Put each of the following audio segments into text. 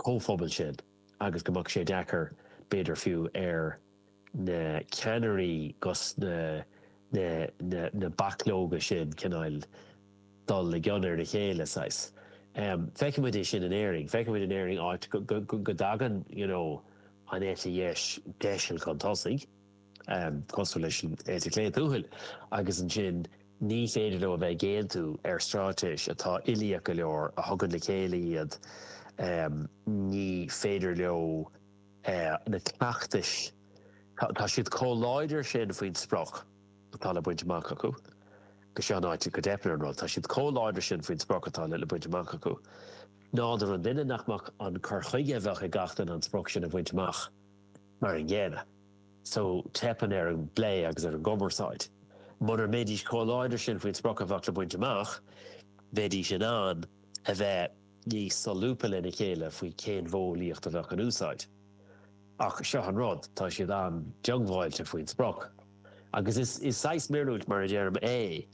gcomhphobal sin agus go mbeadh sé deacair, b'fhéidir fiú, ar na ceannairí agus na bachlóga sin, cineáil, dul i gcion ar a chéile, saghas. Feicimid é sin in Éirinn. Feicimid in Éirinn áit go dtagann, you know, an eite dheis deiseal chun tosaigh. cosúil leis an eite chlé tuathail, agus ansin ní féidir leo a bheith ag aontú ar stráitéis atá uilíoch go leor a thugann le chéile iad, ní féidir leo na cleachtais, tá siad chomh láidir sin faoin sprioc atá le baint amach acu, agus seo an áit go dteipeann ar an rud, tá siad chomh láidir sin faoin sprioc atá le baint amach acu, nádúr an duine nach mbeadh an cur chuige a bheadh ag gach duine an sprioc sin a bhaint amach mar an gcéanna. so teipeann ar an bplé agus ar an gcumarsáid. Mura mbeidís chomh láidir sin faoin sprioc a bheadh le baint amach, bheidís in ann a bheith níos solúbtha lena chéile faoi cén mhodheolaíocht a bheadh in úsáid. Ach seo an rud, tá siad an-diongbháilte faoin sprioc. Agus is saghas míorúilt, mar a deirim, é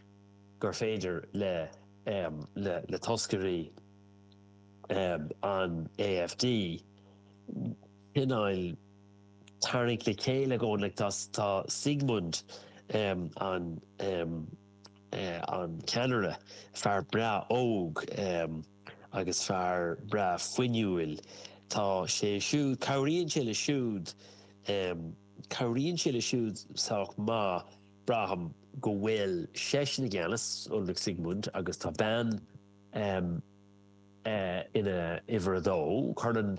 gur féidir le le toscairí an AfD cineál, tarraingt le chéile go leor acu. Tá Siegmund, an an ceannaire, fear breá óg agus fear breá fuinniúil. Tá sé siúd, cabhraíonn sé le siúd, cabhraíonn sé le siúd sách maith. Braithim go bhfuil seisean i gceannas, Ulrich Siegmund, agus tá bean ina uimhir a dó. Cuireann.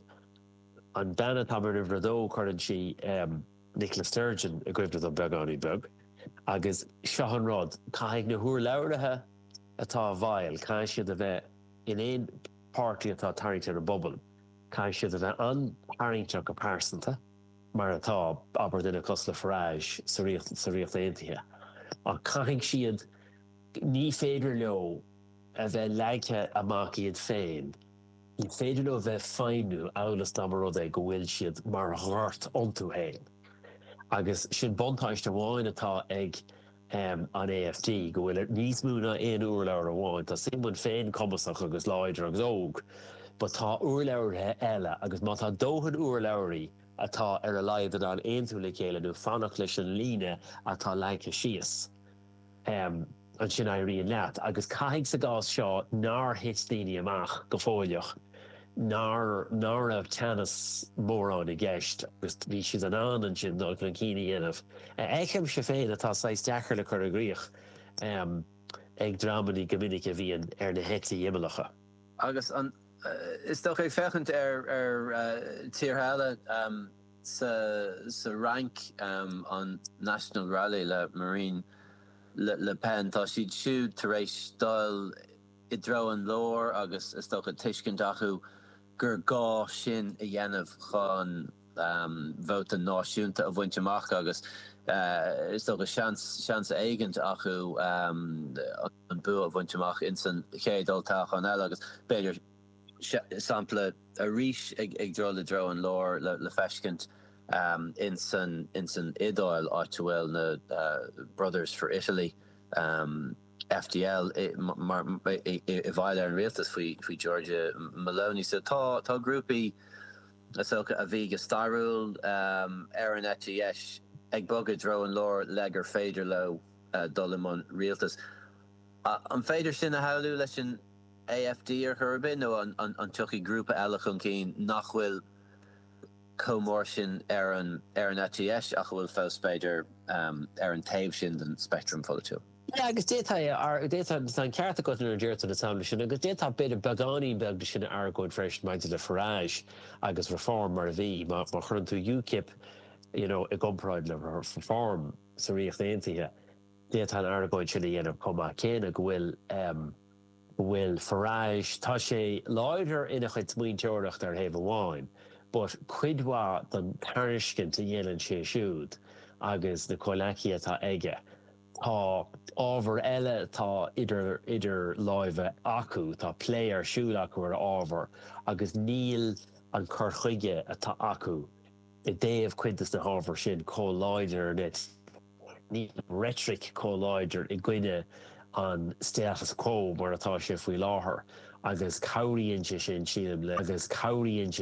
An bhean atá mar uimhir a dó, cuireann sí Nicola Sturgeon i gcuimhne dom beagáinín beag. Agus seo an rud, caithfidh na húrlabhraithe atá, bhuel, caithfidh siad a bheith in aon páirtí atá ag tarraingt ar an bpobal, caithfidh siad a bheith an-tarraingteach go pearsanta, mar atá, abair, duine cosúil le Farage sa Ríocht Aontaithe. Ach caithfidh siad, ní féidir leo a bheith leagtha amach iad féin. Ní féidir leo a bheith ag feidhmiú amhail is dá mba rud é go bhfuil siad mar ghort iontu féin. Agus sin buntáiste amháin atá ag an AFD, go bhfuil níos mó ná aon urlabhraí amháin. Tá Siegmund féin cumasach agus láidir agus óg, but tá urlabhraithe eile agus má tá dóthain urlabhraí atá ar a laghad in ann aontú le chéile nó fanacht leis an líne atá leagtha síos, ansin éiríonn leat. Agus caithfidh sa gcás seo nár thit daoine amach go foscailteach, nár ná raibh teannas mórán i gceist agus bhí siad in ann ansin dul chun cinn a dhéanamh, a fheicimse féin atá saghas deacair le cur i gcrích ag dreamannaí go minic a bhíonn ar na heití imeallacha. Agus an, is dócha, ag féachaint ar tíortha eile. Sa Fhrainc, an National Rally le Marine Le Pen, tá siad siúd tar éis dul i dtreo an láir agus, is dócha, tuiscint acu gur gá sin a dhéanamh chun vóta náisiúnta a bhaint amach agus, is dócha, seans éigin acu an bua a bhaint amach insan chéad toghchán eile agus, b'fhéidir, sampla arís ag dul i dtreo an lár, le feiscint insan Iodáil, áit a bhfuil na Brothers for Italy, FdI, i bhfeighil ar an rialtas faoi Giorgia Meloni. So tá grúpaí is dócha a bhí go stairiúil ar an eite dheis ag bogadh i dtreo an lár le gur féidir leo dul i mbun rialtas. An féidir sin a shamhlú leis an. AFD ar chor ar bith nó an dtiocfaidh grúpa eile chun cinn nach bhfuil chomh mór sin ar an eite dheis ach a bhfuil fós, b'fhéidir, ar an taobh sin den speictream pholaitiúil? Yeah, agus d'fhéadfadh, d'fhéadfadh, tá an ceart agat nuair a deir tú na samplaí sin, agus d'fhéadfá b'fhéidir beagáinín beag de sin a argóint freisin maidir le Farage agus Reform mar a bhí. Má chuireann tú UKIP, you know, i gcomparáid le Reform sa Ríocht Aontaithe, d'fhéadfá an argóint sin a dhéanamh chomh maith céanna go bhfuil, bhfuil Farage, tá sé láidir ina chuid smaointeoireachta ar thaobh amháin but cuid mhaith don tairiscint a dhéanann sé siúd agus na comhleacaí atá aige, tá ábhar eile atá idir láimhe acu, tá plé ar siúl acu ar ábhar agus níl an cur chuige atá acu i dtaobh cuid dos na hábhar sin chomh láidir ar ndoigh. Níl reitric chomh láidir i gcoinne an status quo mar atá sé faoi láthair agus cabhraíonn sé sin, sílim, le